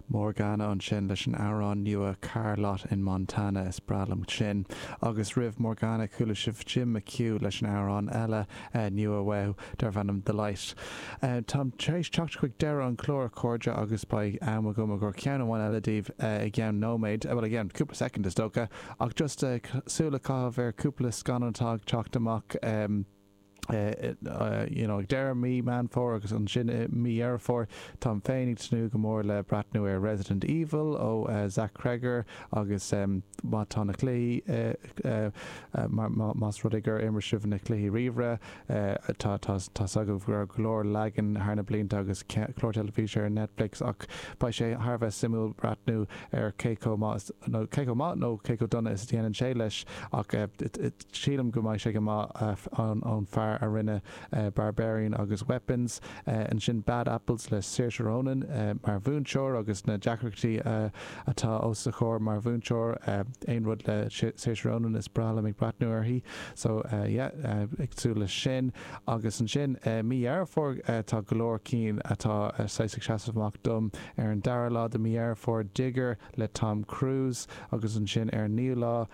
Morgana ansin leis an amhrán nua 'Car Lot in Montana', is breá liom sin. Agus roimh Morgana chuala sibh Jim McHugh leis an amhrán eile nua uaidh darb ainm 'The Light'. Táim tar éis teacht chuig deireadh an chláir a chairde agus beidh am agam chun ceann amháin eile daoibh i gceann nóiméad, bhuel i gceann cúpla soicind is dócha, ach just súil a chaitheamh ar chúpla scannán atá ag teacht amach. you know, ag deireadh mí Meán Fómhair agus ansin i mí Dheireadh Fómhair. Táim féin ag tnúth go mór le breathnú ar Resident Evil ó Zach Cregger agus má tá na cluichí, más rud é gur imir sibh na cluichí ríomhaire, tá's agaibh go raibh go leor leagan thar na blianta agus clár teilifíse ar Netflix ach beidh sé thar a bheith suimiúil breathnú ar cé chomh maith nó cé chomh dona is a dhéanann sé leis ach sílim go mbeidh sé go maith ón fear a rinne Barbarian agus Weapons, ansin Bad Apples le Saoirse Ronan mar mhúinteoir agus na deacrachtaí atá os a comhair mar mhúinteoir, aon rud le Saoirse Ronan is breá liom ag breathnú uirthi, so yeah ag súil leis sin agus ansin mí Dheireadh Fómhair tá go leor cinn atá saghas ag seasamh amach dom, ar an dara lá de mí Dheireadh Fómhair Digger le Tom Cruise agus ansin ar an naoú lá,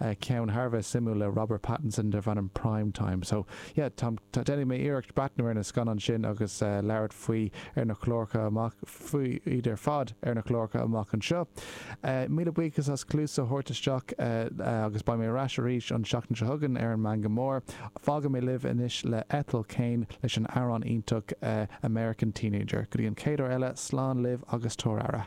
ceann thar a bheith suimiúil le Robert Pattinson darb ainm Prime Time. So, yeah, táim, tá, déanfaidh mé iarracht breathnú ar na scannáin sin agus labhairt faoi ar na cláracha amach, faoi iad ar fad ar na cláracha amach anseo. Míle buíochas as cluas a thabhairt isteach agus beidh mé ar ais arís an tseachtain seo chugainn ar an Meangadh Mór. Fágfaidh mé libh anois le Ethel Cain leis an amhrán iontach American Teenager. Go dtí an chéad uair eile, slán libh agus tabhair aire.